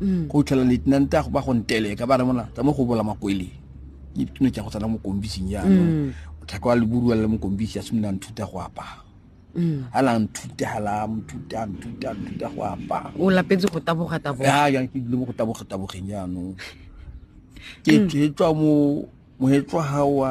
mm. go tlhela lieutenant a go ba go nteleka ba re mona tsa mo go bola makwele ke dituno tsa go tsana mo kombising ya mm. botlhaka wa leburuwa le mo kombisi a simolola nthuta go apaa mm. ha la nthuta ha la nthuta nthuta nthuta go apaa o lapetse go taboga taboga ya ya ke dile mo go taboga tabogeng ya no ke tswa mo mo etswa ha wa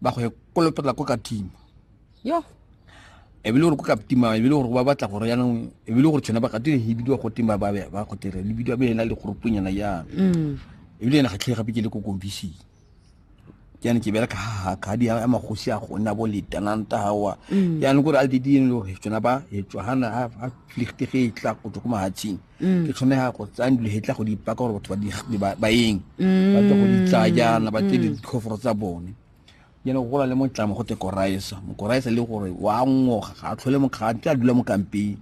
ba go kolopela ko katima yo ebile gore ko katima ebile gore ba batla gore yanong ebile gore tshwana ba katile e bidiwa go tima ba ba go tere le bidiwa bena le gore punyana ya mm. ebile ena khatlhe gape ke le ko kombisi ke yana ke bela ka ha ka di ya magosi a go nna bo le tananta hawa yana mm. gore a di di le gore tshwana ba e tshwana ha ha flichtige e tla go tlo ko mahatsing mm. ke tshwanega go tsaya dilegetla go dipaka gore batho ba eng mm. ba tle go di tsaya jaana ba tle mm. ditlhoforo tsa bone jane go gola le motlamo go te koraesa mokoraesa le gore wa ngoga ga a tlhole mokgaa tla dula mo kampeng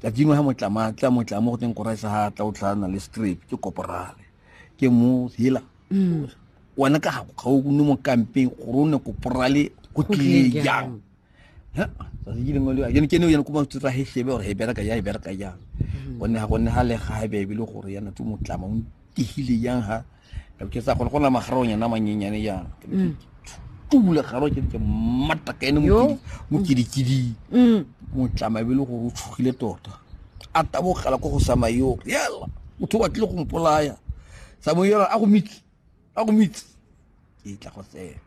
ka dingwe ha motlama tla motlamo go teng koraesa ga tla o tlhana le strip ke koporale ke mo hela wena ka ga o nne mo kampeng gore o ne koporale go tlile jang ya tsatsi ke lengwe le yone ke ne yone ko ba tsotsa he shebe gore he bereka ya e bereka yang mm-hmm. gonne ga gonne ga le ga ha bebe le gore yana tse motlama o ntihile yang ha ka ke sa gone go na magarong yana manyenyane yang mm. tula garo ke ke matta ka ene mo mo kidikidi mm. motlama be le gore o tshogile tota a tabogela ko go samayo yela motho wa tle go mpolaya samoyela a go mitse a go mitse ke tla go tsena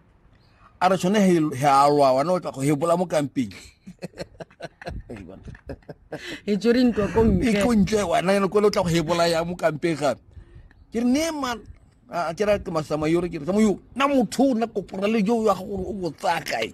a re tshone he a lwa wana o tla go hebola mo kampeng e tsere ntwa ko ntle e ko ntle wana ene ko le tla go hebola ya mo kampeng ga ke ne ma a ke ra ke masama yore ke re mo yo na motho na kopora le jo ya go o botsa kae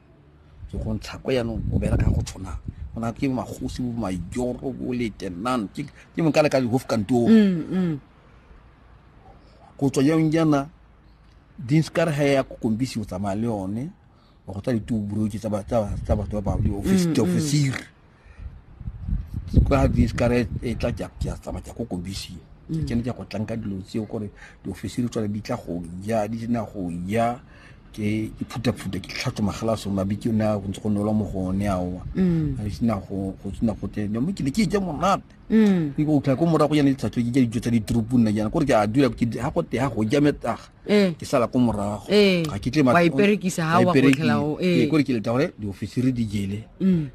ke go ntsha ko yanong o bereka go tshwana go na ke magosi bo majoro bo letenan ke ke mo kale ka di hof kantor mm, mm. go tswa yang jana din skar ha ya ko kombisi o tsamaya le yone go tsa ditubulo tsa ba tsa ba tsa ba ba office mm, mm. officer kwa diskare e tla ke a tsamaya ke a ko kobisiwa mm. ke ne ke go tlanka dilo tseo gore diofisi di tswana di tla go ja di sena go ja ke iphutaphuta ke tlhatso magala so mabe ke na go ntse go nolwa mo go one aowa mm. a sena go go tsena go tena mo ke ne ke je monate mm. ke go tla ko morago yana ditlhatso ke ja dijo tsa ditrupu nna jana gore ke a dula ke ha go te ha go ja metaga eh. ke sala ko morago eh. ga ke tle ma iperekisa ha wa go tlhela o eh gore ke leta gore diofisi re di jele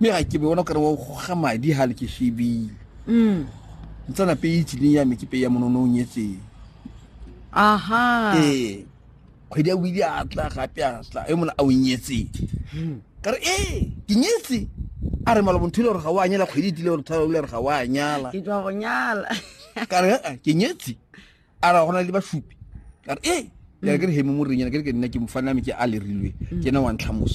mme ga ke bona kare wa goga madi ga le ke shebile mm. ntsana pe e tsileng ya me ke pe ya monono o nyetseng aha ee kgwedi ya wile a tla gape a tla e mona a o nyetseng hmm. ka re ee ke nyetse a re malobo ntho ile gore ga o a nyala kgwedi e tile gore thalo le re ga o a nyala ke tswa go nyala ka re ee ke nyetse a ra gona le basupi ka re ee ke re ke re heme mo renyana ke re ke nna ke mofaname ke a lerilwe ke ena wa ntlhamoso